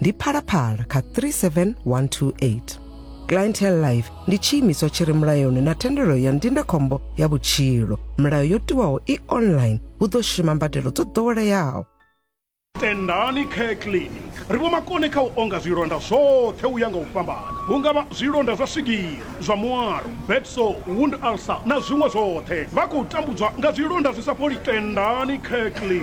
ndi phalaphala kha 37128 clientele life ndi tshiimiswa tshi re mulayoni na thendelo ya ndindakhombo ya vhutshilo milayo yo tiwaho i online hu ḓo shuma mbadelo dzo ḓoweleaho tendani care clinic ri vho makone kha u onga zwilonda zwoṱhe u ya nga u fhambana hu nga vha zwilonda zwa swigiri zwa muaro, bed sore, wound ulcer na zwiṅwe zwoṱhe. Vha khou tambudzwa nga zwilonda zwi sa fholi. Tendani Kirkley.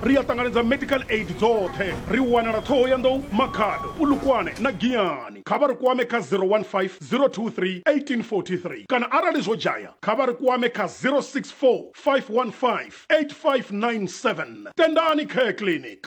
Ri a ṱanganedza medical aid dzoṱhe. Ri wanala Thohoyandou, Makhado, Polokwane na Giyani. Kha vha ri kwame kha 015 023 1843 kana arali zwo dzhaya kha vha ri kwame kha 064 515 8597. Tendani Care Clinic.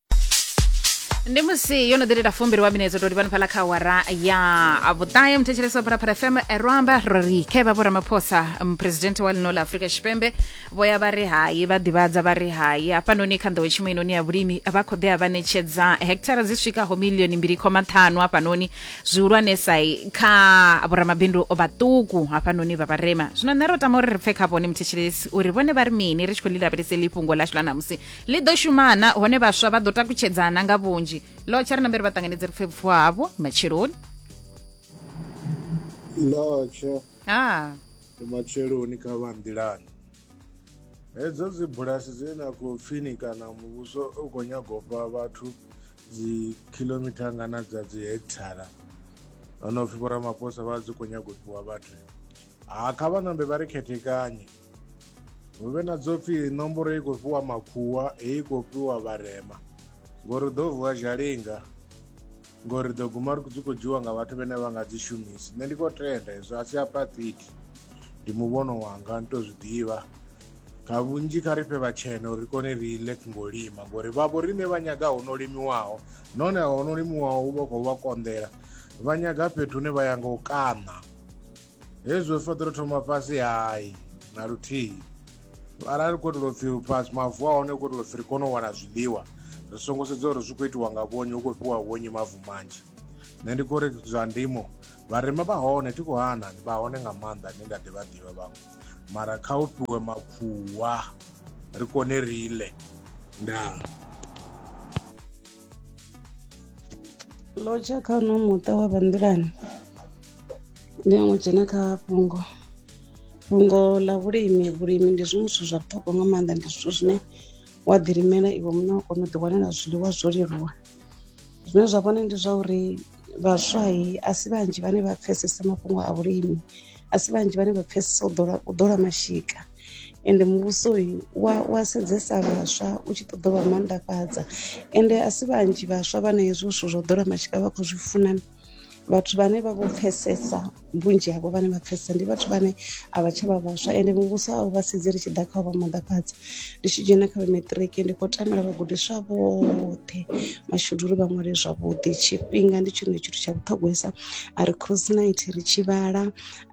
ndi musi yo no ḓi lila fumbili wa minedzo toli pano phala kha awara ya vhuṱahe muthetshelesi wa phalaphala fm erwamba ri khe vha vhoramaphosa muphuresidennde wa lino la afurika tshipembe vho ya vha ri hai vha ḓivhadza vha ri hai hafhanoni kha nḓowetshumo inoni ya vhulimi vha khou ḓea vha ṋetshedza hekithara dzi swikaho milioni mbili khoma ṱhanu hafhanoni zwihulwanesa kha vhoramabindu vhaṱuku hafhanoni vha vharema zwino nṋe ro tama uri ri pfe kha vhone muthetshelesi uri vhone vha ri mini ri tshi khou lilavheleseli fhungo ḽashu ḽa ṋamusi ḽi ḓo shumana hone vhaswa vha ḓo takutshedzana nga vhunzhi lotsha ri nambere vha ṱanganedze ri pfe vhufuwa havho matsheloni lotsha ha matsheloni kha vha nḓilani hedzo dzi bulasi dze na khou pfini kana muvhuso u khou nyaga u fha vhathu dzi khilomita ngana dza dzi hekthara ono pfhi vhoramaphosa vha dzi khou nyaga u fhiwa vhathu ha kha vha nambe vha ri khethekanye hu vhe na dzo pfhi nomboro i khou fhiwa makhuwa heyi i khou fhiwa vharema ngori ḓo vuwa zhalinga ngori ḓo guma ri dzi khou dzhiwa nga vhathu vhane vha nga dzi shumisi nṋe ndi khou tenda hezwo a si apathidi ndi muvhono wanga ni tou zwi ḓivha nga vhunzhi kha ri fhe vhatshena uri kone ri ile ngo lima ngori vhavho riṋe vha nyaga ho no limiwaho nahone ho no limiwaho u vha khou vha konḓela vha nyaga fhethu hune vha ya nga u kaṋa hezwi ri fanela u thoma fhasi hai na luthihi arali ri khou itela upfhi fhasi mavu a hone u khou itela upfhi ri kone u wana zwiḽiwa ri songo sedza uri zwi khou itiwa nga vhonyi hu khou fhiwa vhonyi mavu manzhi nṋe ndi khou ri zwa ndimo vharema vha hone thi khou hana vha hone nga maanḓa ni nga ḓivha ḓivha vhaṅwe mara kha u fhiwe makhuwa ri kone ri ḽe ndaa lotsha kha uno muṱa wa vhanḓilani ndi a ṅwe dzhena kha fhungo fhungo ḽa vhulimi vhulimi ndi zwiṅwe zwithu zwa vhuṱhogwa nga maanḓa ndi zwithu zwine wa ḓilimela iwe muṋe wa kona u ḓiwanela zwiḽiwa zwo leluwa zwine zwa vhone ndi zwa uri Vhaswa a si vhanzhi vhane vha pfhesesa mafhungo a vhulimi a si vhanzhi vhane vha pfhesesa u ḓola u ḓola mashika ende muvhuso wa wa sedzesa vhaswa u tshi ṱoḓa vha maanḓafhadza ende a si vhanzhi vhaswa vhana hezwo zwithu zwa u ḓola mashika vha khou zwi funa vhathu vhane vha vho pfhesesa vhunzhi havho vhane vha pfesesa ndi vhathu vhane a vha tsha vha vhaswa ende muvhuso a u vha sedzi ri tshi ḓa kha u vha maḓafhadza ndi tshi dzhena kha vhemaṱiriki ndi khou tamela vhagudiswa vhoṱhe mashudu uri vha ṅwale zwavhuḓi tshifhinga ndi tshone tshithu tsha vhuṱhogwesa a ri cross night ri tshi vhala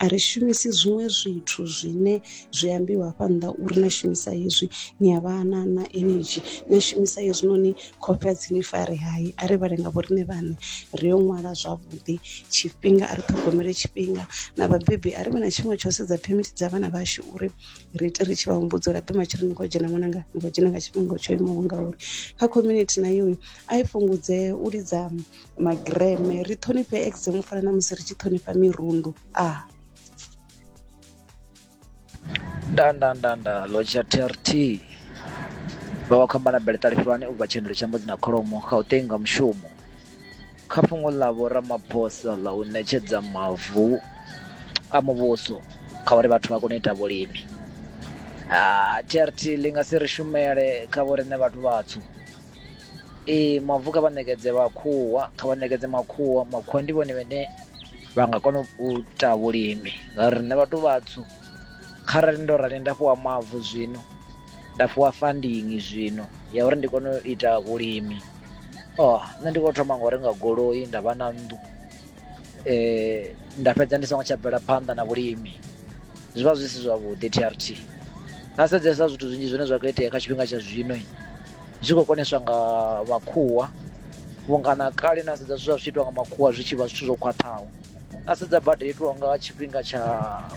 a ri shumisi zwiṅwe zwithu zwine zwi ambiwa hafha nnḓa uri na shumisa hezwi ni a vha na na energy na shumisa hezwinoni khofhe a dzi ni fare hai a ri vhale nga vhoriṋe vhaṋe ri yo ṅwala zwavhuḓi tshifhinga a ri ṱhogomele tshifhinga na vhabebi a ri vhe na tshiṅwe tsha u sedza phemithi dza vhana vhashu uri ri ite ri tshi vha humbudza uri aḓi matshelo ni khou dzhena ṅwananga ni khou dzhena nga tshifhinga tsho imaho ngauri kha community na yoyo a i fhungudze u lidza magireme ri ṱhonifhe exam u fana na musi ri tshi ṱhonifha mirundu a ah. ndandandanda lo tsha trt vha wa khamba na beletale fulwane u bva tshendelo tsha mbudzi na kholomo kha u tenga mushumo kha fhungo ḽa vho ramaphosa ḽa u ṋetshedza mavu a muvhuso kha uri vhathu vha kone u ita vhulimi trt ḽi nga si ri shumele kha vho riṋe vhathu vhatswu Ee mavu kha vha ṋekedze makhuwa kha vha ṋekedze makhuwa makhuwa ndi vhone vhane vha nga kona u ita vhulimi ngauri riṋe vhathu vhatswu kharali ndo rali nda fhiwa mavu zwino nda fhiwa funding zwino ya uri ndi kone u ita vhulimi nṋe ndi kho thoma nga u renga goloi nda vha na nnḓu nda fhedza ndi songo tsha bvela phanḓa na vhulimi zwi vha zwi si zwavhuḓi T_R_T na sedzesa zwithu zwinzhi zwine zwa kho itea kha tshifhinga tsha zwino. zwi khou koneswa nga vhakhuwa vhunga na kale na sedza zwithu zwa zwi itwa nga makhuwa zwi tshi vha zwithu zwo khwaṱhaho na sedza bada itiwa nga tshifhinga tsha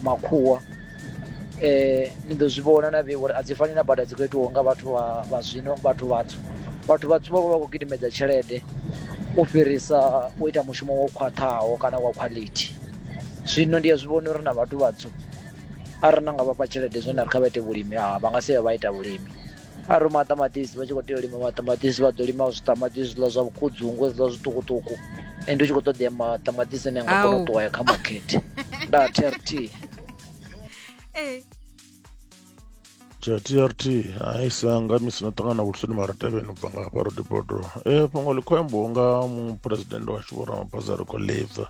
makhuwa um ni ḓo zwi vhona na vheiwa uri a dzi fani na bada dzi khou itiwaho nga vhathu vha zwino vhathu vhatswu vhathu vhatswu vha vha vha khou gidimedza tshelede u fhirisa u ita mushumo wo khwaṱhaho kana wa khwaḽithi zwino ndi a zwi vhona uri na vhathu vhatswu arali na nga vhafha tshelede zwo na ri kha vha ite vhulimi a vha nga si vha vha ita vhulimi a ri maṱamaṱisi vha tshi khou tea u lima maṱamaṱisi vha ḓo lima zwiṱamaṱisi zwiḽa zwa vhukhudzungu hezwiḽa zwiṱukuṱuku ende u tshi khou ṱoḓea maṱamaṱisi ane a nga kona u Au. ṱuwa ya kha makete nda trt Eh, tsha trt hai sanga misi no ṱangana vhulsoni mara tevheni u bva nga hafha rodibodo e fhungo ḽi khou ambiwa nga muphuresidennde washu vho ramaphosa ri khou ḽibva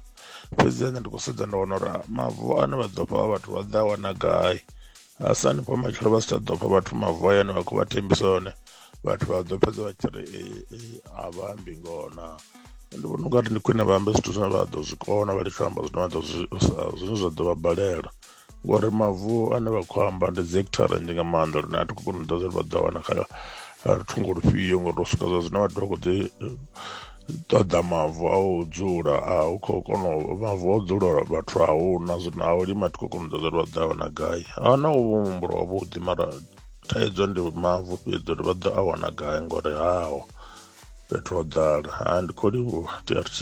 fhedzi ane ndi khou sedza nda wana uri mavu ane vha ḓo fha vhathu vha ḓa a wana gai Hasani vho matshelo vha si tsha ḓo pfha vhathu mavu hayani vha khou vha thembisa one vhathu vha ḓo fhedza vha tshi ri a vha ambi ngoho na ndi vhona unga ri ndi khwine vha ambe zwithu zwine vha ḓo zwi kona vha litsho amba zwine vha ḓo zwi zwine zwa ḓo vha balela ngori mavu ane vha khou amba ndi dzi hekithara nnzhi nga maanḓa lune a thi khou kona u ḓa zwine vha ḓo wana kha thungo lufhio ngori u swika zwa zwino vhathu vha khou ḓi ṱoḓa mavu a u dzula a u khou kona u mavu a u dzula vhathu a hu na zwino a u lima thi khou kona u ṱoḓa uri vha ḓo a wana gai a hu na u muhumbulo wavhuḓi mara thaidzo ndi mavu fhedzi uri vha ḓo a wana gai ngori haho fhethu ho ḓala ha ndi khou livhuwa trt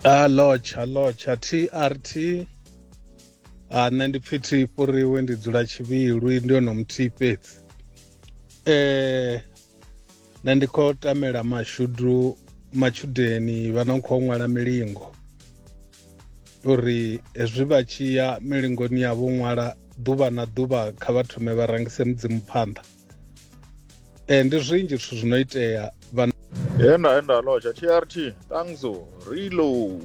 a lodge a lodge a trt a nṋe ndi pfi thi fhuriwe ndi dzula tshivhilwi ndi hone muthihi fhedzi eh nṋe ndi khou tamela mashudu matshudeni vha no khou ṅwala milingo uri hezwi vha tshi ya milingoni ya vho ṅwala ḓuvha na ḓuvha kha vha thome vha rangise mudzimu phanḓa eh ndi zwinzhi zwithu zwi no itea vha henda henda loja trt tangso rilo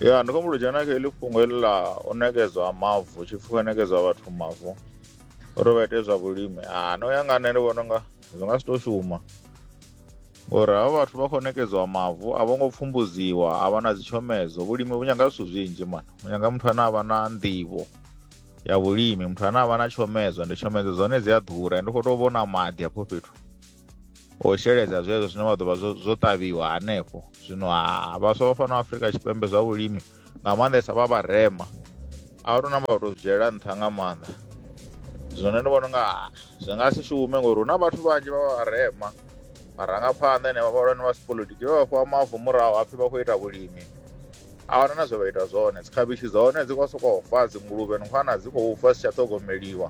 ya ndi khou mbuludzhena kha heḽi fhungo heḽi ḽa u nekedzwa mavu tshipfuka nekedzwa vhathu mavu uri vha ite zwa vhulimi ah, no ya nga nṋe ndi vhona unga zwi nga si to shuma ngori havha vhathu vha khou nekedziwa mavu a vho ngo pfumbudziwa a vha na dzitshomedzo vhulimi vhu nyanga zwithu zwinzhi mani vhu nyanga muthu ane a vha na nḓivho ya vhulimi muthu ane a vha na tshomedzo ndi tshomedzo dzone dzi a ḓura ndi khou tou vhona maḓi hafho fhethu o sheledza zwezwo zwine vha ḓo vha zwo ṱavhiwa hanefho zwino ha vhaswa vha fana afrika tshipembe zwa vhulimi nga maanḓesa vha vharema a vha tou namba vha tou zwi dzhiela nṱha nga maanḓa zwone ndi vhona unga ah, zwi nga si shume ngori hu na vhathu vhanzhi vha vharema marangaphanḓa ene vhahulwane vha sipolitiki vha vhafhiwa mavu murahu hapfi vha khou ita vhulimi a wana na zwe vha ita zwone dzikhavhishi dza hone dzi khou sokou fa dzinguluvhe nkhwana dzi khou fa si tsha ṱhogomeliwa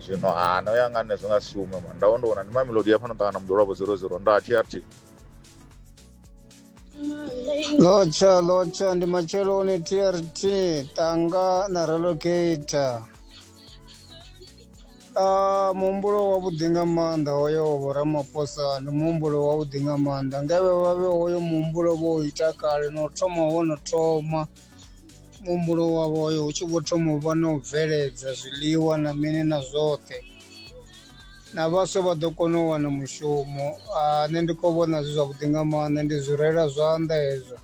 zwino ha no ya nga nṋe zwi nga si shume mani ndavho ndi vhona ndi mamelodi ya fhano ṱangana muḓolwavho 00 nda trt lotsha lotsha ndi macheloni trt tanga na relocator Ah, muhumbulo wavhuḓi nga maanḓa hoyo vho ramaphosa ndi muhumbulo wavhuḓi nga maanḓa ngavhe vhavhe hoyo muhumbulo vho u ita kale no thoma wo no thoma muhumbulo wavho hoyo hu tshi vho thoma u vha na u bveledza zwiḽiwa na mini na zwoṱhe na vhaswa vha ḓo kona u wana mushumo ah, nṋe ndi khou vhona zwi zwavhuḓi nga maanḓa ndi zwi rela zwanḓa hezwo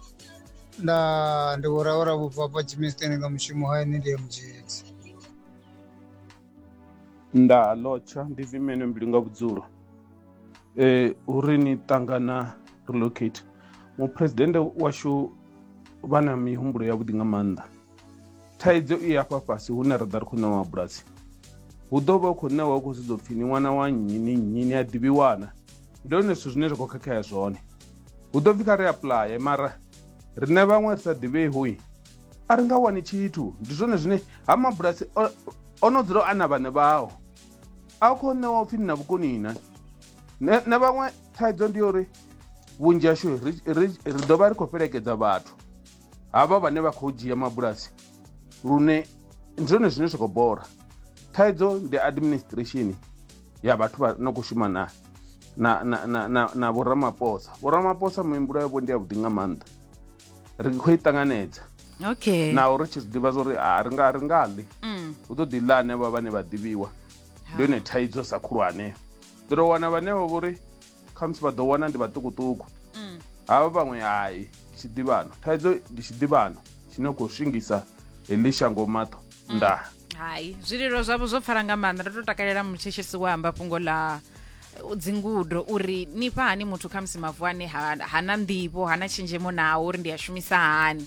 nda ndi vho ravhura vhubva hafha jimisteni nga mushumo ha ine ndi ya mudzhedzi nda lotsha ndi vimene mbilu nga vhudzulo eh uri ni ṱangana relocate muphuresidennde washu vha na mihumbulo yavhuḓi nga maanḓa thaidzo i hafha fhasi hune ra ḓa ri khou ṋewa mabulasi hu ḓo vha u khou ṋewa u khou sedza upfhi ni ṅwana wa nnyi ni nnyi ni a ḓivhiwana ndi hone zwithu zwine zwa khou khakhea zwone hu ḓo pfhi kha ri aplaye mara riṋe vhaṅwe ri sa ḓivhei hoi a ri nga wani tshithu ndi zwone zwine ha mabulasi o no dzula a na vhane vhao a u khou ṋewa upfhi ni na vhukoni na na vhaṅwe thaidzo ndi yo uri vhunzhi hashu ri ḓo vha ri khou fhelekedza vhathu havha vhane vha khou dzhia mabulasi lune ndi zwone zwine zwa khou bola thaidzo ndi administration ya vhathu vha no khou shuma na na na na na, na vhoramaphosa vhoramaphosa mihumbulo yavho ndi yavhuḓi nga maanḓa ri khou i ṱanganedza okay naho ri tshi zwi ḓivha zwa uri a ri nga ri nga ḽi mm. hu ḓo ḓi ḽa ane vha vhane vha ḓivhiwa ndi yone thaidzo sa khulwane ḓo tou wana vhane vha vho ri khamusi vha ḓo wana ndi vhaṱukuṱuku mm. havha vhaṅwe hai tshiḓivhano thaidzo ndi tshiḓivhano tshine khou swingisa heḽi shango maṱo mm. nda hai zwililo zwavho zwo pfala nga maanḓa ndo to takalela mutsheshesi wa amba fhungo ḽa dzingudo uri ni fha hani muthu khamusi mavu ane hana nḓivho hana tshenzhemo nawo uri ndi a shumisa hani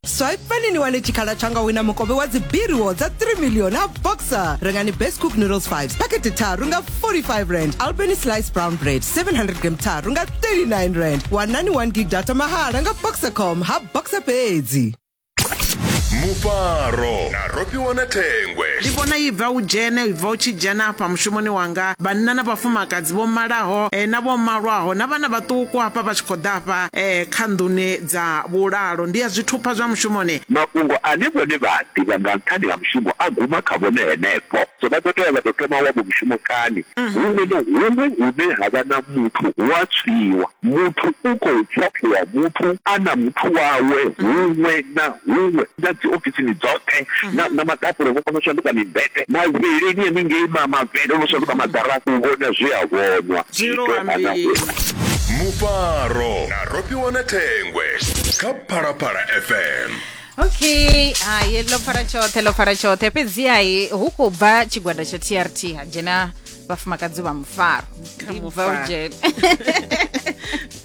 swipani ni wane tshikhala tsha nga wina mukovhe wa dzibiriwo dza 3 million a boxer rengani best cook noodles 5 pakete tharu nga 45 rand albany slice brown bread 700 gram tharu nga 39 rand wanani 1 gig data mahala nga boxercom ha boxer fhedzi mufaro na rofhiwa na thengwe ndi vhona i bva u dzhene i bva u tshi dzhena afha mushumoni wanga vhanna na vhafumakadzi vho malaho eh, na vho malwaho na vhana vhaṱuku hafha vha tshi khou ḓa afha eh, kha nḓuni Dza vhulalo ndi ya zwithupha zwa mushumoni. Mafhungo ane vhone vha a ḓivha nga nṱhani ha mushumo a guma kha vhone henefho. So vha ḓo tea vha tou thoma wavho mushumo kani? Huṅwe na huṅwe hune ha vha na muthu hu a tswiwa. Muthu u khou pfapfuwa muthu a na muthu wawe huṅwe na huṅwe. na dziofisini dzoṱhe na maṱapula vho kona u shanduka mimbete mavheleni haningei mavhele no shanduka madara u vhona zwi a vhonwa mufaro na rofhiwa na thengwe kha phalaphala fm okay hayi ḽo fara tshoṱhe ḽo fara tshoṱhe fhedziha hu khou bva tshigwada tsha trt ha dzhena vhafumakadzi vha mufaro Kha Ndi mufaro. Belgian.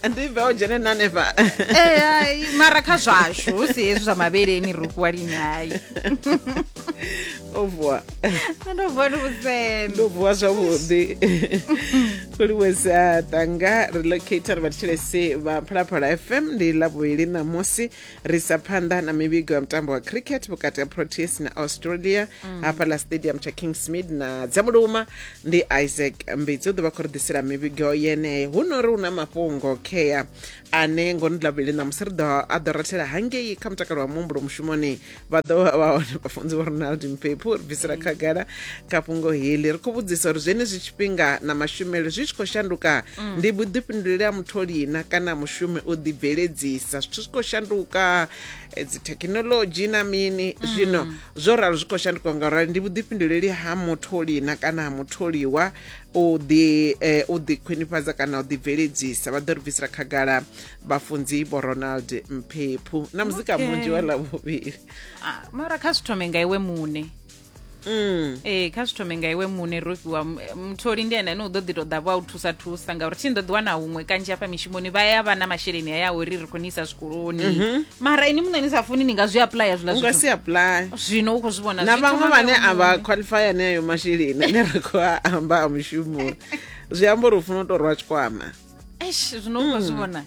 ndi belgene na hanefha Eh, hai, mara kha zwashu hu si hezwi zwa mavheleni ri fhiwa lini hai o vuwa ndo vuwa ndi vhusendo ndo vuwa zwavhuḓi kuliwesa tanga relocator vha thetshelesi vha phalaphala fm ndi ḽa vhuvhili ṋamusi ri sa phanḓa na mivhigo ya mutambo wa cricket vhukati ha proteas na australia mm. hafha ḽa stadium tsha kingsmid na dzamuluma ndi isaac mbitsi u ḓo vha khou ri ḓisela mivhigo yeneyo hu no ri hu na mafhungo khea ane ngoni ḽa vhuvhili ṋamusi ri ḓo a ḓo rathela hangei kha mutakalo wa muhumbulo mushumoni vha ḓo vha vha hone vhafunzi vho ronald mpephu ri bvisela khagala kha fhungo heḽi ri khou vhudzisa uri zwenezwi tshifhinga na mashumele zwi tshi khou shanduka ndi vhuḓifhinduleli ha mutholi na kana mushumi u ḓibveledzisa zwithu zwi khou shanduka eh, dzi thekhinolodzhi na mini zwino zwo ralo zwi khou shanduka ngaurali ndi vhuḓifhinduleli ha mutholi na kana ha mutholiwa u ḓi eh, u ḓi khwinifhadza kana u ḓibveledzisa vha ḓo ri bvisela khagala vhafunzi vho ronald mphephu na muzika Okay. munzhi wa ḽavhuvhili Ah, mara kha zwi thome nga iwe muṋe mm. ee kha zwi thome nga iwe muṋe ro fhiwa m- mutholi ndi ene ane u ḓo ḓi tou ḓa vha u thusa thusa ngauri thi ni ḓo ḓi wana huṅwe kanzhi hafha mishumoni vha ya vha na masheleni a ya uri ri khou ni isa zwikoloni mara ini muṋe ni sa funi ni nga zwi aplya zwiḽa u nga zwithu si apply zwino u khou zwi vhona na zwi vhaṅwe thoma vhane nga a iwe vha muṋe. qualify ane ayo masheleni ane ra khou a amba a mushumoni zwi amba uri u funa u tou rwa tshikwama eish zwino u nga zwi vhona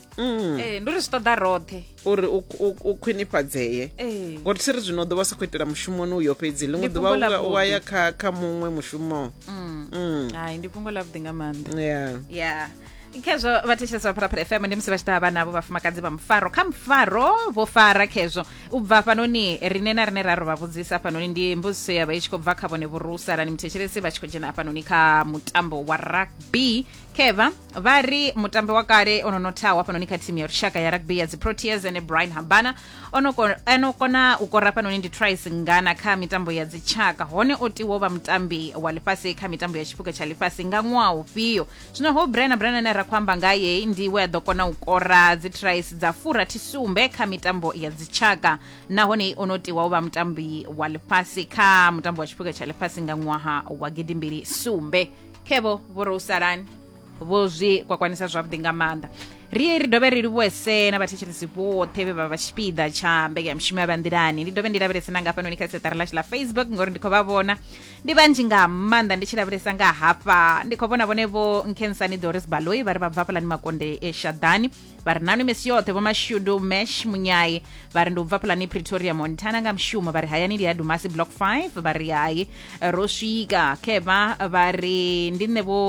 Eh, ndi uri zwi ṱoḓa roṱhe uri u- u- u khwinifhadzee Eh. ngori thi ri zwino u ḓovha sa khou itela mushumoni uyo fhedzi ḽiṅwe Ndi ḓuvha fhungo ḽa u- u aya vhuḓi. kha kha muṅwe mushumo Mm. hai ndi fhungo ḽa vhuḓi nga maanḓa Yeah. ya khezwo vhathetshelesi vha pharapara fm ndi musi vha tshi ḓa vha navho vhafumakadzi vha mufaro kha mufaro vho fara khezwo u bva fhanoni rine na rine ra ro vha vhudzisa fhanoni ndi mbudziso ya vha i tshi khou bva kha vhone vhurusa rani muthetshelesi vha tshi khou dzhena hafhanoni kha mutambo wa rugby keva vha ri mutambi wa kale o no nothaho hafhanoni kha thimu ya lushaka ya rugby ya dziproteas ene brian habana o no ko- o no kona u kora hafhanoni ndi tris ngana kha mitambo ya dzitshaka hone o tiwo vha mutambi wa ḽifhasi kha mitambo ya tshiphuga tsha ḽifhasi nga ṅwaha ufhio zwino ho brian brian ane ra khou amba ngaye ndi we a ḓo kona u kora dzitris dza furathi sumbe kha mitambo ya dzitshaka nahone o no tiwa u vha mutambi wa ḽifhasi kha mutambo wa tshiphuga tsha ḽifhasi nga ṅwaha wa gidimbili sumbe khevo vho ro usalani vho zwi kwakwanisa zwavhuḓi nga maanḓa ri ri dovhe ri livhuwese na vhathetshelesi vhoṱhe vhe vha vha tshipiḓa tsha mbekanyamushumo ya vhanḓilani ndi dovhe ndi lavhelese na ngafhanoni kha seṱari lashu la facebook ngori ndi khou vha vhona ndi vhanzhi nga maanḓa ndi tshi lavhelesa nga hafha ndi khou vhona vhone vho nkensani doris baloi vha ri vha bva fhalani makonde e shaḓani vha ri nanu misi yoṱhe vho mashudu mash munyayi vha ri ndi u bva pulani pretoria montana nga mushumo vha ri hayani ndi ya dumasi block 5 vha ri hayi ro swika khevha vha ri ndi nṋe vho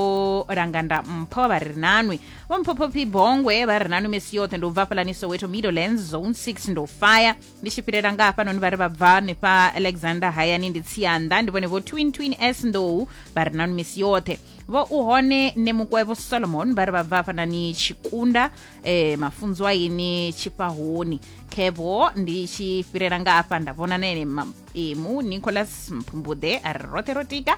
langanda mpho vha ri nanwi vho mphophophi bongwe vha ri nanu misi yoṱhe ndi u bva pulani soweto middlelands zone 6 ndo faya ndi tshi fhirela nga hafhanoni vha ri vha bva hanefha alexander hayani ndi tsianda ndi vhone vho twin twin s ndou vha ri nanu misi yoṱhe vho u hone ne mukwevho solomon vha ri vha bva hafhanani tshikunda eh, mafunzo a ini tshifhahoni kevo ndi tshi fhirela nga hafha nda vhona na ene ma- emu nicholas mphumbuḓe a ri roṱhe ro tika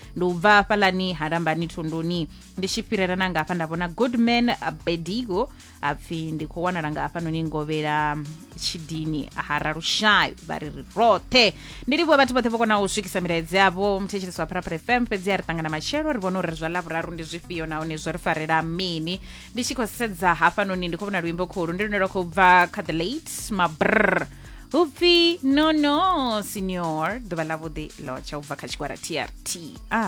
ndi u bva hafhalani ha lambani thunduni ndi tshi fhirela na nga hafha nda vhona goodman bedigo a pfhi ndi khou wanala nga hafhanoni ngovhela tshidini ha ralushayo vha ri ri roṱhe ndi livhuwa vhathu vhoṱhe vho konaho u swikisa milaedzi yavho muthetshelesi wa pharapara fm fhedzi a ri ṱangana matshelo ri vhona uri zwa lavhuraru ndi zwifhio nahone zwo ri farela mini ndi tshi khou sedza hafhanoni ndi khou vhona luimbo khulu ndi lune lwa khou bva kha the late mabrr upfi no no senior ḓuvha ḽavhuḓi lotsha u bva kha tshigwada trt a